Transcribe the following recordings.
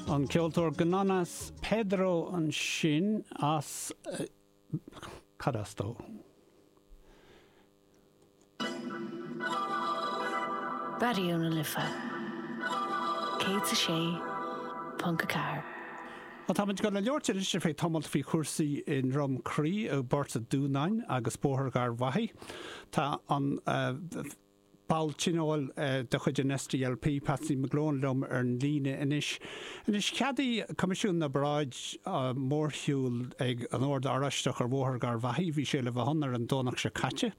An ceoltóir Gnonnas Pedro ansin as Cad as dó? Ó tá muid ag gabháil a labhairt anois ar feadh tamailt faoi chúrsaí i nDroim Crí i bPort an Dúnáin agus Bóthar Gharbhachaidh. Tá an. ball tionóil de chuid an SDLP, Patsy McGlone, liom ar an líne anois. Anois, cheadaigh Coimisiún na bParáid mórshiúl ag an Ord Oráisteach ar Bhóthar Gharbhachaidh, bhí sé le bheith ann ar an Domhnach seo caite,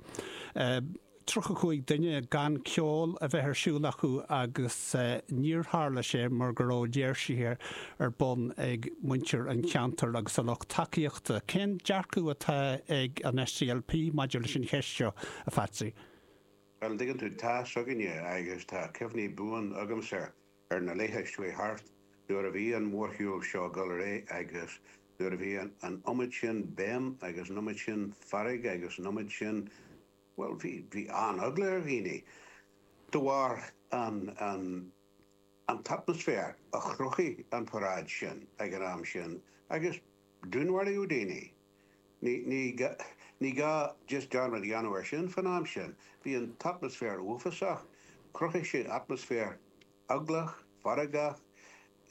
tríocha cúig duine, gan ceol a bheith ar siúl acu agus níor tharla sé mar go raibh léirsithe ar bun ag muintir an cheantair agus a lucht tacaíochta. Cén dearcadh atá ag an SDLP maidir leis an cheist seo, a Phatsy? An dtuigeann tú, tá a fhios againne agus tá cuimhní buan agamsa ar na laetha a chuaigh thart nuair a bhí an mórshiúl seo ag dul ar aghaidh agus nuair a bhí an iomad sin béim agus an iomad sin fearg agus an iomad sin, bhuel, bhí, bhí an-eagla ar dhaoine de bharr an, an, an t-atmaisféar a chruthaigh an paráid sin ag an am sin agus dúnmharaíodh daoine. Ní gá just dearmad a dhéanamh air sin fan am sin. Bhí an t-atmaisféar uafásach. Chruthaigh sé atmaisféar eaglach, feargach.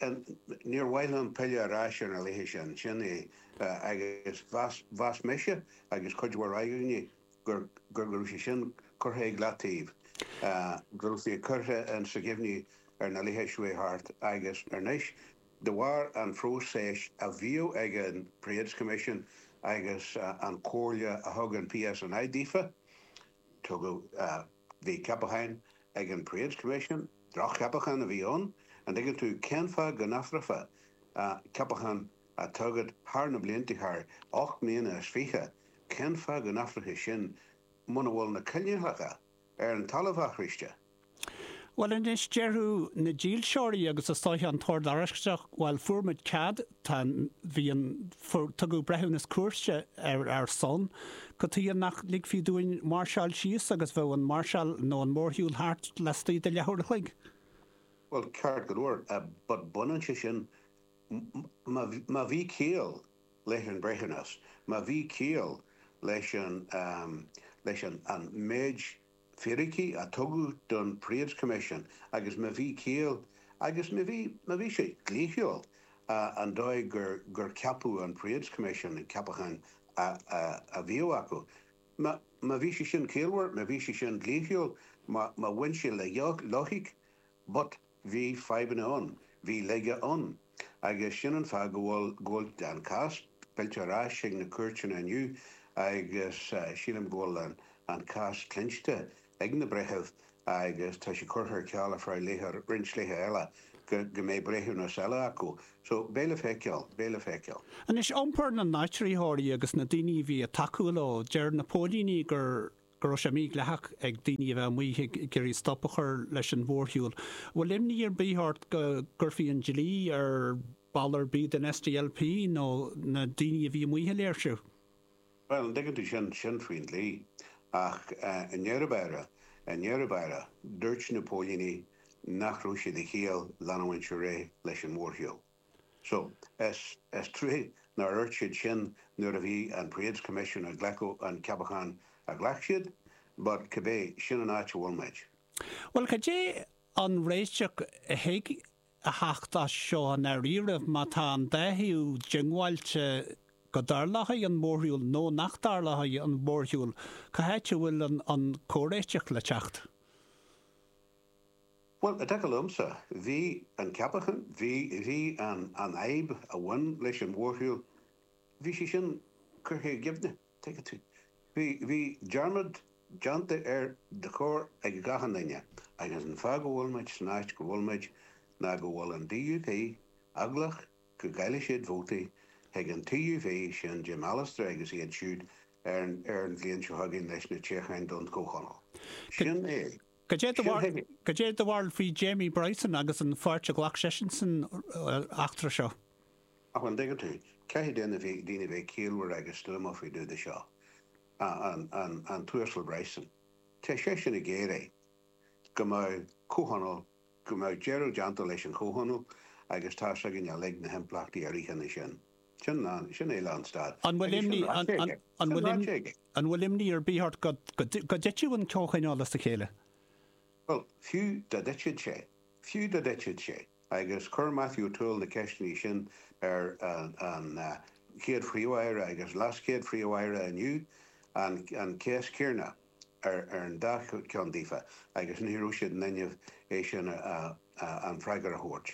Níor mhaith liom pilleadh ar ais ar na laetha sin. Sin é. Agus mheas mise agus cuid mhór againne gur go raibh sé sin curtha ag leataobh, go raibh sé curtha sa gcuimhne ar na laetha a chuaigh thart agus anois, De bharr an phróiseas a bhíodh ag an Parades Commission agus an chomhairle a thug an PSNI daofa, tugadh, bhí ceapacháin ag an Parades Commission, droch-cheapacháin a bhí ann, an dtuigeann tú, cén fáth go n-athrófaí ceapachán a tugadh thar na blianta, thar ocht mbliana is fiche, cén fáth go n-athrófaí sin muna bhfuil na coinníollacha ar an talamh athraiste. Bhuel anois, déarfadh na dílseoirí agus is dóiche an tOrd Oráisteach, bhuel, fuair muid cead, tá an, bhí an, fuair, tugadh breithiúnas cúirte ar ár son, cad chuige nach ligfí dúinn máirseáil síos agus bheadh an máirseáil nó an mórshiúl thart lastuigh de leathuair a chloig? Bhuel, ceart go leor, but baineann sé sin, má bhí ciall, leis an mbreithiúnas, má bhí ciall leis an leis an an méid fíricí a tugadh don Parades Commission agus má bhí ciall agus má bhí má bhí sé dlíthiúil an dóigh gur gur ceapadh an Parades Commission an ceapachán a a bhíodh acu má má bhí sé sin ciallmhar má bhí sé sin dlíthiúil má má bhain sé le loighic But, bhí fadhbanna ann, bhí laige ann, agus sin an fáth go bhfuil, go bhfuil an cás fillte ar ais chuig na cúirteanna inniu agus sílim go bhfuil an, an cás cluinste ag na breithimh agus tá sé curtha ar ceal ar feadh laetha, roinnt laetha eile go, go mbeidh breithiúnas eile acu. So, beidh le feiceáil, beidh le feiceáil. Anois, iompar na n-áitritheoirí agus na daoine a bhí ag tacú leo, deir na póilíní gur, go raibh sé mídhleathach ag daoine a bheith amuigh ag iarraidh stop a chur leis an mhórshiúl. An bhfuil imní ar bith ort go gcuirfí an dlí ar bhall ar bith den SDLP nó na daoine a bhí amuigh ag léirsiú? Bhuel, an dtuigeann tú, sin, sin faoin dlí. Ach i ndeireadh báire, i ndeireadh báire, dúirt na póilíní nach raibh sé de chiall leanúint ar aghaidh leis an mhórshiúl. So, is trua nár dhúirt siad sin nuair a bhí an Parades Commission ag glacadh an ceapachán a ghlac siad, but cibé, sin an áit a bhfuil muid. Bhuel, cad é an réiteach a thig a theacht as seo i ndáiríribh? Má tá an dá thaobh diongbháilte go dtarlóidh an mórshiúl nó nach dtarlóidh an mhórshiúl, cá háit a bhfuil an comhréiteach le teacht? Bhuel, i dtaca liomsa, bhí an ceapachán, bhí, bhí an, an fhadhb a bhain leis an mhórshiúl, bhí sí sin curtha i gcuimhne, tuigeann tú. Bhí, bhí dearmad déanta air de chóir ag achan duine agus an fáth go bhfuil muid san áit go bhfuil muid ná go bhfuil an DUP eaglach go gcaillfidh siad vótaí chuig an TUV, sin Jim Allister agus iad siúd ar an, ar an bhliain seo chugainn leis na toghcháin don Chomhthionól. Sin é. Cad é do bharúil faoi Jamie Bryson agus an pháirt a ghlac seisean san eachtra seo? Ach an dtuigeann tú, caithfidh daoine a bheith ciallmhar agus stuama faoin diúlach seo, an tUasal Bryson. Tá seisean ag iarraidh go mbeadh comhthionól, go mbeadh deireadh déanta leis an chomhthionól agus tá 's againn uilig na himpleachtaí a ritheann as sin. Sin é lánstad. An bhfuil imní Sin ráite aige. An bhfuil imní ar bith ort go dtitfidh an comhthionól as a chéile? Bhuel, fiú dá dtitfeadh sé, fiú dá dtitfeadh sé, agus chuir Matthew O'Toole na ceisteanna sin ar an chéad phríomh-aire agus leaschéad phríomh-aire inniu, an cheist chéanna ar an dá cheann daofa, agus ní raibh siad in inmhe é sin an freagair a thabhairt.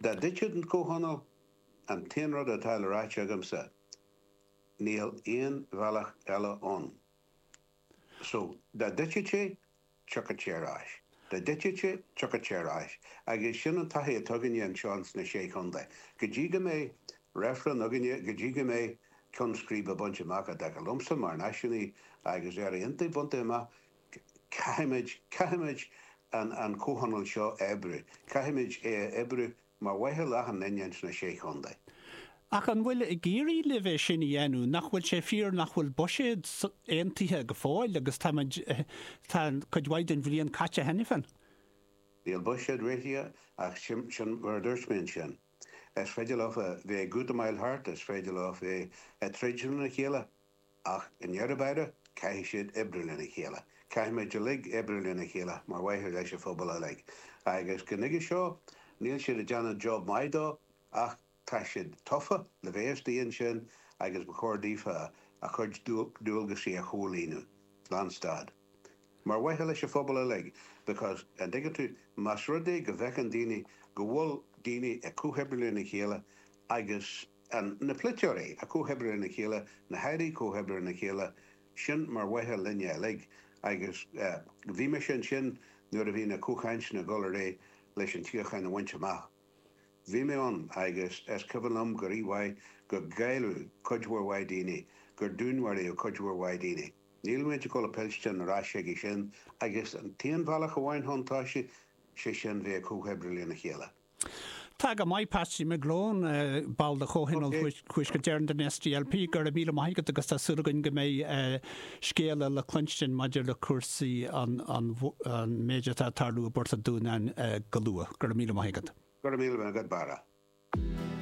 Dá dtitfeadh an comhthionól, An t-aon rud atá le ráit agamsa, níl aon bhealach eile ann. So, dá dtitfeadh sé, tiocfadh sé ar ais. Dá dtitfeadh sé, tiocfadh sé ar ais. Agus sin an taithí atá againne anseo sna Sé Chontae. Go dtí go mbeidh reifreann againne, go dtí go mbeidh ceann scríbe bainte amach, i dtaca liomsa mar náisiúnaí agus Éire Aontaithe bainte amach, caithfimid, caithfimid an comhthionól seo a oibriú. Caithfimid é a oibriú mar mhaithe le achan nduine againn sna Sé Chontae. Ach an bhfuil ag éirí libh é sin a dhéanamh? Nach bhfuil sé fíor nach bhfuil buiséad aontaithe go fóill agus táimid, tá cuid mhaith den bhliain caite cheana féin. Níl buiséad réitithe ach sin mar a dúirt mé ansin. Is féidir leofa bheith ag útamáil thart, is féidir leofa bheith ag troid lena chéile. Ach i ndeireadh báire, caithfidh siad oibriú lena chéile. Caithfimid uilig oibriú lena chéile mar mhaithe leis an phobal uilig. Agus go nuige seo, níl siad ag déanamh job maith de, ach tá siad tofa, le bheith ag déanamh sin, agus ba chóir daofa a gcuid dualgaisí a chomhlíonadh. Lánstad. mar mhaithe leis an phobal uilig because, an dtuigeann tú, más rud é go bhfeiceann daoine go bhfuil daoine ag comhoibriú lena chéile agus an, na polaiteoirí ag comhoibriú lena chéile, na hairí ag comhoibriú lena chéile, sin mar mhaithe linne uilig agus eh bhí mise ansin nuair a bhí na comhchainteanna ag dul ar aghaidh leis an tsíocháin a bhaint amach. Bhí mé ann agus is cuimhin liom go rí-mhaith gur cailleadh cuid mhór mhaith daoine, gur dúnmharaíodh cuid mhór mhaith daoine. Níl muid ag gabháil a philleadh ar ais chuige sin, agus an t-aon bhealach amháin chun toisigh, sé sin bheith ag comhoibriú lena chéile. Tá go maith, Patsy McGlone, ball de Chomhthionól Thuaisceart Éireann den SDLP. Go raibh míle maith agat agus tá súil againn go mbeidh scéala le cluinstin maidir le cúrsaí an méid atá ag tarlú i bPort an Dúnáin go luath. Go raibh míle maith agat. Go raibh míle maith agat, Barra.